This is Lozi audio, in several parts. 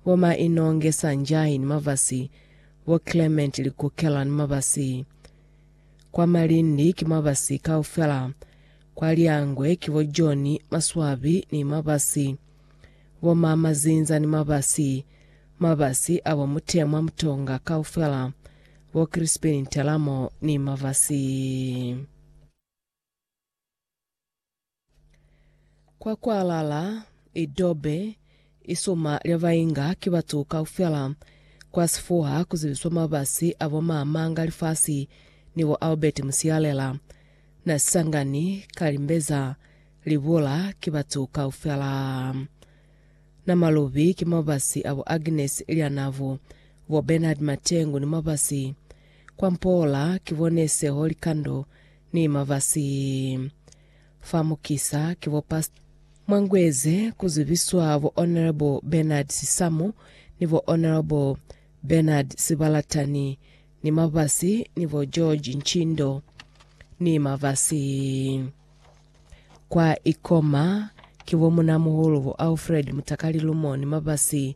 bo Ma Inonge Sanjay ni Mabasi, bo Clement Likukela ni Mabasi. Kwa Malindi ki Mabasi kaufela, kwa Liangwe ki bo John Maswabi ni Mabasi, bo Ma Mazinza ni Mabasi, Mabasi a bo Mutemwa Mutonga kaufela, bo Crispin Ntelamo ni Mabasi. Kwa kwalala, idobe, isuma lya bainga ki batu kaufela. Kwa sifuha ku zibiswa mabasi a bo Maamanga Lifasi ni bo Albert Musialela. Na sisangani ka limbeza, libula, ki batu kaufela. Na malubi ki mabasi a bo Agnes Lyanavu, bo Bernard Matengu ni mabasi. Kwa mpoola, ki bo Nese Holikando Ni mabasi fa mukisa ki bo Past. Mwangueze ku zibiswa bo Honourable Bernard Sisamu ni bo Honourable Bernard Sibalatani ni mabasi ni bo George Ntshindo ni mabasi. Kwa Ikoma ki bo Munamuhulu bo Alfred Mutakalilumo ni mabasi.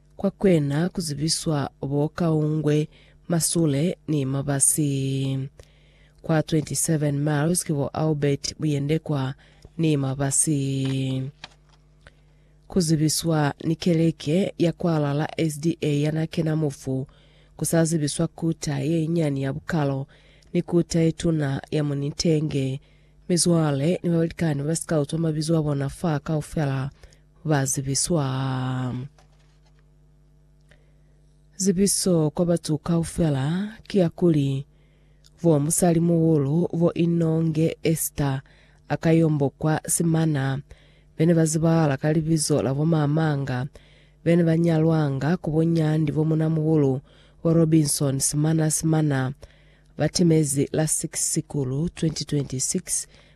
Kwa kwena ku zibiswa bo Kaungwe, Masule ni Mabasi. Kwa 27 miles ki bo Albert, Buyendekwa ni Mabasi. Ku zibiswa ni keleke ya kwalala SDA ya na kena mufu, ku sa zibiswa kuta ye inyani ya Bukalo ni kuta ye tuna ya Munitenge. Mizwale ni balikani ba Scout ba mabizo a bona fa kaufela ba zibiswa zibiso kwa batu kaufela kiakuli, bo musalimuhulu bo Inonge Esther a ka yombokwa simana, bene ba zibahala ka libizo la bo Mamanga, bene ba nyalwanga ku bo Nyandi bo munamuhulu bo Robinson Simana Simana, ba timezi la 6 Sikulu 2026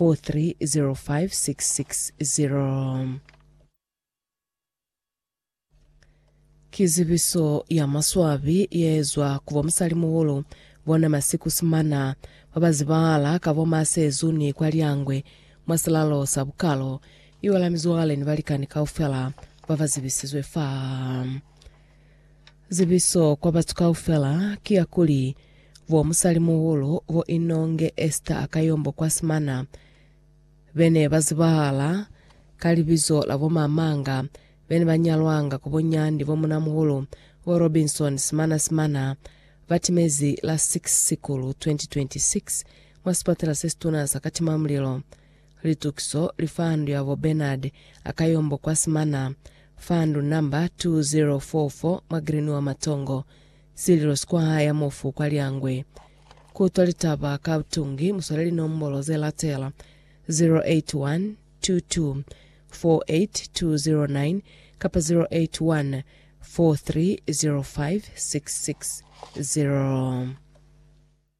4305660. Ki zibiso ya maswabi yeezwa ku bomusalimuhulu bona masiku simana babazibahala ka bo ma Sezu ni kwa Lyangwe mwa silalo sa bukalo, iwa la mizwale ni balikani kaufela babazibisizwe fa. Zibiso kwa batu kaufela ki ya kuli, bo musalimuhulu bo Inonge Esther Akayombo kwa Smyrna be ne ba zibahala ka libizo la bo Mamanga be ne ba nyalwanga ku bo Nyandi bo munamuhulu bo Robinson Smyrna Smyrna ba timezi la 6 Sikulu 2026 mwa sipatela se situna sa Katimamulilo Litukiso li fandu ya bo Bernard Akayombo kwa Simana, fandu namba 2044 mwa Green wa Matongo, Sililo Square ya Mofu kwa Lyangwe. Ku utwa litaba ka butungi mu swale linombolo ze latela, 0812248209 kapa 0814305660.